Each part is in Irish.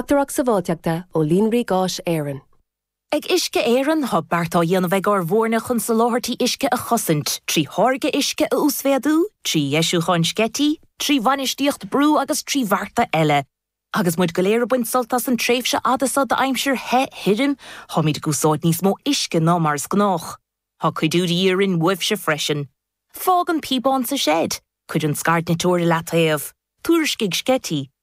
Uachtarach Sabháilteachta ó Líonraí Gáis Éireann. Ag Uisce Éireann, tá beart á dhéanamh ag ár bhfoirne chun soláthairtí uisce a chosaint, trí tháirgeadh uisce a uasmhéadú, trí dheisiúcháin sceití, trí bhainistíocht brú agus trí bhearta eile. Agus muid go léir ag baint sult as an tréimhse fhada seo d'aimsir the, thirim, táimid ag úsáid níos mó uisce ná mar is gnách. Tá cuidiú de dhíth orainn uaibhse freisin. Fág an píobán sa seid. Cuir an scairdniteoir i leataobh. Tuairiscigh sceití.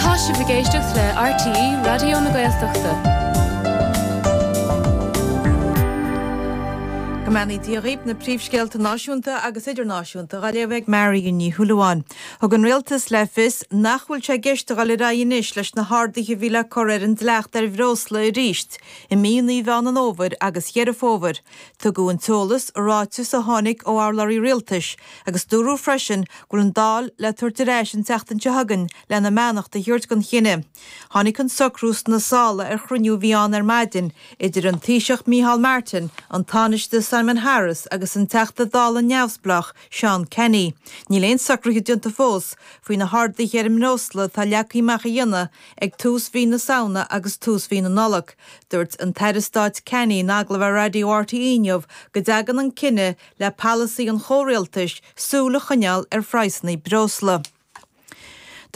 Tá sibh ag éisteacht le RTÉ Raidió na Gaeltachta. Go mbeannaí Dia dhaoibh, na príomhscéalta náisiúnta agus idirnáisiúnta á léamh ag Marion Ní Shúilleabháin. Thug an Rialtas le fios nach bhfuil sé i gceist a dhul ar aghaidh anois leis na harduithe a bhí le cur ar an dleacht ar bhreosla arís i mí, mí Mheán an Fhómhair agus Dheireadh Fómhair. Tugadh an t-eolas i ráiteas a tháinig ó urlabhraí rialtais agus dúradh freisin go bhfuil an Dáil le tabhairt ar ais an tseachtain seo chugainn lena mbeannacht a thabhairt don chinneadh. Tháinig an socrú sna sála ar chruinniú a bhí ann ar maidin idir an Taoiseach Micheál Martin, an Tánaiste Simon Harris agus an Teachta Dála neamhspleách Seán Canney. Níl aon socruithe déanta fós faoi na harduithe ar an mbreosla atá leagtha amach a dhéanamh Ag tús mhí na Samhna agus tús mhí na Nollag, dúirt an tAire Stáit Canney in agallamh ar Raidió RTÉ inniu go dtagann an cinneadh le polasaí an chomhrialtais súil a choinneáil ar phraghsanna breosla.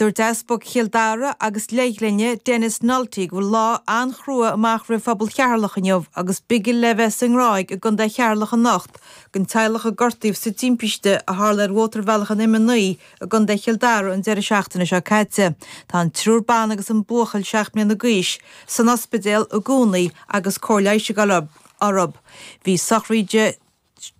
Dúirt Easpag Chill Dara agus Leithghlinne, Denis Nulty, go bhfuil lá an-chrua amach roimh phobal Cheatharlach inniu agus bigil le bheith sa nGráig i gContae Cheatharlach anocht don teaghlach a gortaíodh sa timpiste a tharla ar Mhótarbhealach an M9 i gContae Chill Dara an deireadh seachtaine seo caite. Tá an triúr ban agus an buachaill seacht mbliana d'aois san ospidéal i gcónaí agus cóir leighis ag dul orthu. Bhí sochraid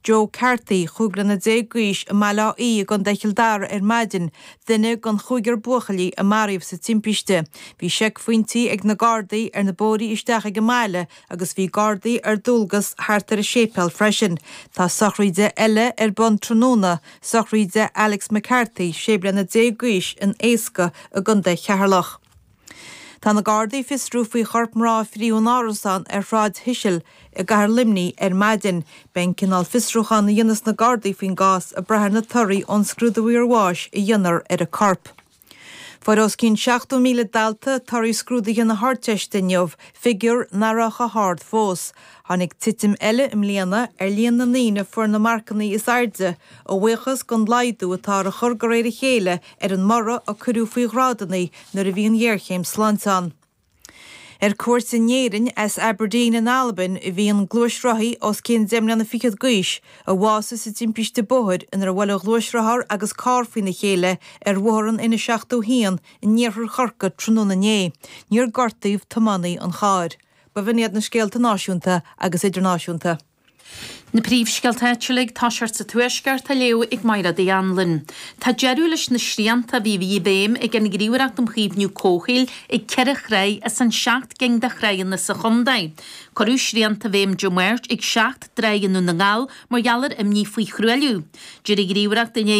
Joe Carthy, chúig bliana déag d'aois, i mBaile Átha Í i gContae Chill Dara ar maidin, duine den chúigear buachaillí a maraíodh sa timpiste. Bhí seicphointí ag na Gardaí ar na bóithrí isteach ag an mbaile agus bhí gardaí ar dualgas thart ar an séipéal freisin. Tá sochraid eile ar bun tráthnóna, sochraid Alex McCarthy, 16 bliana d'aois, in Easca i gContae Cheatharlach. Tá na gardaí ag fiosrú faoi chorp mná a frítheadh in árasán ar Shráid Shisil i gcathair Luimnigh ar maidin. Beidh an cineál fiosrúcháin a dhéanfas na gardaí faoin gcás ag brath ar na torthaí ón scrúdú iarbháis a dhéanfar ar an gcorp. Fuair os cionn 70,000 dalta torthaí scrúduithe na hArdteiste inniu, figiúr nach raibh chomh hard fós. Tháinig titim eile i mbliana ar líon na ndaoine a fuair na marcanna is airde, a bhuíochas don laghdú atá á chur de réir a chéile ar an mborradh a cuireadh faoi ghrádanna nuair a bhí an ghéarchéim sláinte ann. Ar cuairt in Éirinn as Aberdeen in Albain a bhí an gluaisrothaí os cionn deich mbliana fichead d'aois a bhásaigh sa timpiste bóthair inar bhuail a ghluaisrothar agus carr faoina chéile ar Bhóthar an N71 in iarthar Chorcaí tráthnóna inné. Níor gortaíodh tiománaí an chairr. B'in iad na scéalta náisiúnta agus idirnáisiúnta. Na príomhscéalta áitiúla ag tosacht sa Tuaisceart á léamh ag Mairéad Uí Anluain. Tá deireadh leis na srianta a bhí i bhfeidhm ag an nGníomhaireacht um Chaomhnú Comhshaoil ag ceithre thráigh as an seacht gcinn de thráigheanna sa chontae. Cuireadh srianta i bhfeidhm Dé Máirt ag seacht dtráigh i nDún na nGall mar gheall ar imní faoi thruailliú. D'iarr an Ghníomhaireacht inné